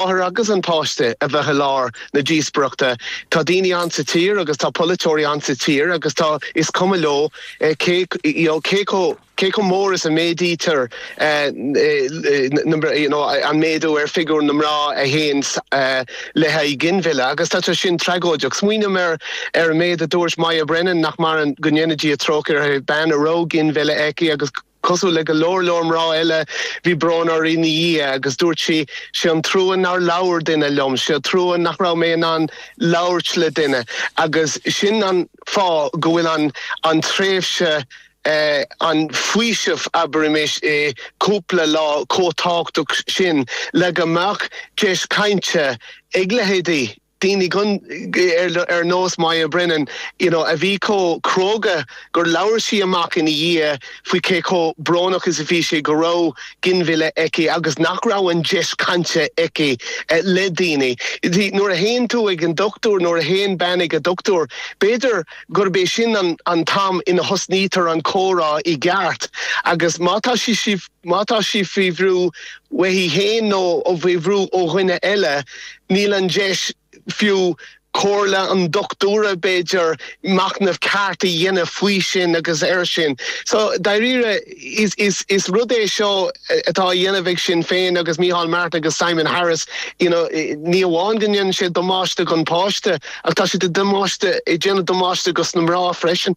máthair agus an páiste a bheith i lár na díospoireachta. Tá daoine ann sa tír agus tá polaiteoirí ann sa tír agus tá, is cuma leo cé, you know, cé chomh, cé chomh mór is a mhéadaítear na, you know, an méadú ar figiúr na mná a théann le haghaidh ginmhilleadh agus tá sé sin tragóideach. Smaoiním ar, ar an méid a dúirt Moya Brennan, nach maireann, go ndéana Dia trócaire uirthi, bean a raibh ginmhilleadh aici agus, Cosúil le go leor leor mná eile bhí brón uirthi ina dhiaidh agus dúirt sí, Sé an trua nár labhair duine liom, sé an trua nach raibh mé in ann labhairt le duine agus sin an fáth go bhfuil an an tréimhse an faoiseamh abraimis i cúpla lá chomh tábhachtach sin le go mbeadh deis cainte ag leithéidí daoine gan ar nós Moya Brennan, you know a bhí chomh cróga gur labhair sí amach ina dhiaidh faoi cé chomh brónach is a bhí sé go raibh ginmhilleadh aici agus nach raibh an deis cainte aici le daoine. Nuair a théann tú ag an dochtúir, nuair a théann bean ag an dochtúir, b'fhéidir gurb é sin an t-am ina dtosnaítear an comhrá i gceart agus má tá sí Má tá sí faoi bhrú uaithi féin nó faoi bhrú ó dhuine eile, níl an deis, fiú comhairle an dochtúra b'fhéidir, machnamh ceart a dhéanamh faoi sin agus air sin. So, dáiríre, is rud é seo atá á dhéanamh ag Sinn Féin agus Micheál Martin agus Simon Harris, you know, ní amháin go ndéanann siad damáiste don pháiste ach tá siad ag damáiste, ag déanamh damáiste dos na mná freisin.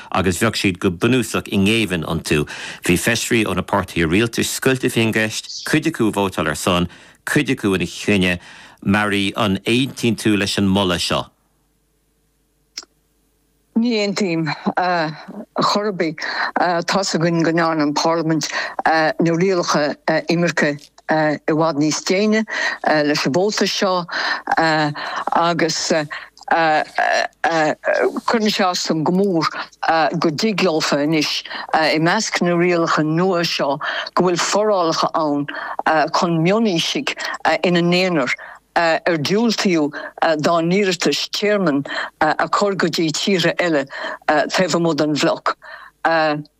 agus bheadh siad go bunúsach i ngéibheann iontu. Bhí feisirí ó na páirtithe rialtais scoilte faoin gceist, cuid acu ag vótáil ar a son, cuid acu ina choinne. Mary, an aontaíonn tú leis an moladh seo? Ní aontaím chor ar bith. Tá's againn go ndearna an Pharlaimint na rialacha imirce i bhfad níos déine leis an vóta seo agus cuireann sé as dom go mór go dtig leofa anois, i measc na rialacha nua seo, go bhfuil forálacha ann chun mionaoisigh ina n-aonar ar diúltaíodh dá n-iarratais tearmainn a chur go dtí tíortha eile taobh amuigh den bhloc.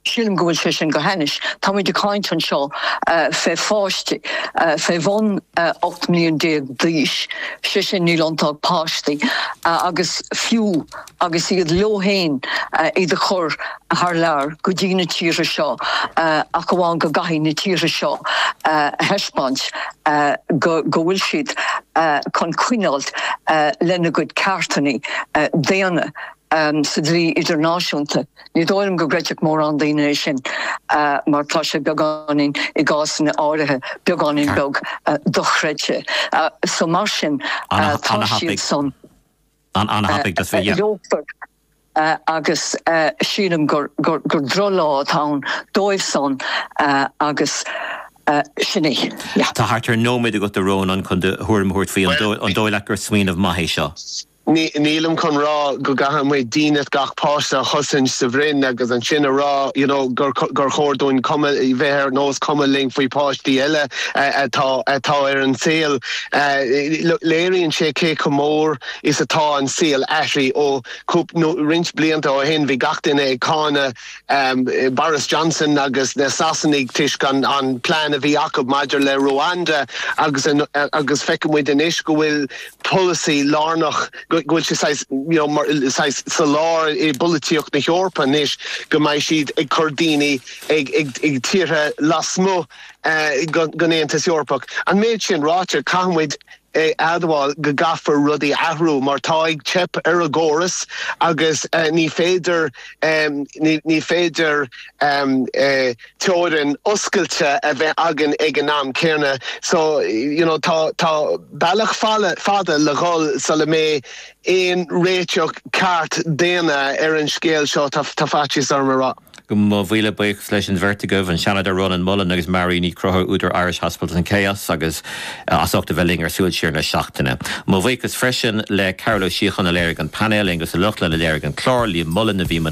Sílim go bhfuil sé sin go hainnis. Táimid ag caint anseo faoi pháistí faoi bhun 18 mbliain d'aois, sé sin níl iontu ach páistí, agus fiú agus iad leo fhéin iad a chur thar lear go dtí na tíortha seo ach amháin go gcaithfidh na tíortha seo a thaispeáint go bhfuil siad chun coinneáil lena gcuid ceartannaí daonna sa dlí idirnáisiúnta. Ní dóigh liom go gcreidfeadh mórán daoine é sin mar tá sé beagáinín, i gcásanna áirithe, beagáinín beag dochreidte. So mar sin tá siadsan leofair agus sílim gur droch-lá atá ann dóibhsan agus sin é. Yeah. Tá thart ar nóiméad agat a Rónán chun do thuairim a thabhairt faoi. An dóigh leat gur smaoineamh maith é seo? Nílim chun rá go gcaithfidh muid dínit gach páiste a chosaint sa bhroinn agus ansin a rá you know gur gur chóir dúinn cuma bheith ar nós cuma linn faoi páistí eile atá atá ar an saol. Look léiríonn sé cé chomh mór is atá an saol athraithe ó cúp nó roinnt blianta ó shin bhí gach duine ag cáineadh um Boris Johnson agus na Sasanaigh toisc an an plean a bhí acu maidir le Rwanda agus an agus feicfidh muid anois go bhfuil polasaí lárnach, go bhfuil sé saghas, you know, mar saghas sa lár i bpolaitíocht na hEorpa anois, go mbeidh siad ag cur daoine ag, ag, ag tíortha lasmuigh eh gon, gon Aontas Eorpach. An méid sin ráite, caithfidh muid a admháil go gcaithfear rudaí a athrú mar tá ag teip ar an gcóras agus eh ní féidir, em, ní, ní féidir, em, eh, teorainn oscailte a bheith againn ag an am céanna so you know tá tá bealach fada fada le dhul sula mbeidh aon réiteach ceart daonna ar an scéal seo tá tá faitíos orm a rá. Mo mhíle buíochas leis an bheirt agaibh, an Seanadóir Rónán Mullen agus Marie Ní Chonchúir, údar Irish Hospitals in Chaos, agus as ucht a bheith linn ar Súil Siar na Seachtaine. Mo bhuíochas freisin le Cearbhall Ó Síocháin a léirigh an painéal, Aonghus Ó Lochlainn a léirigh an clár, Liam Mullen a bhí i mbun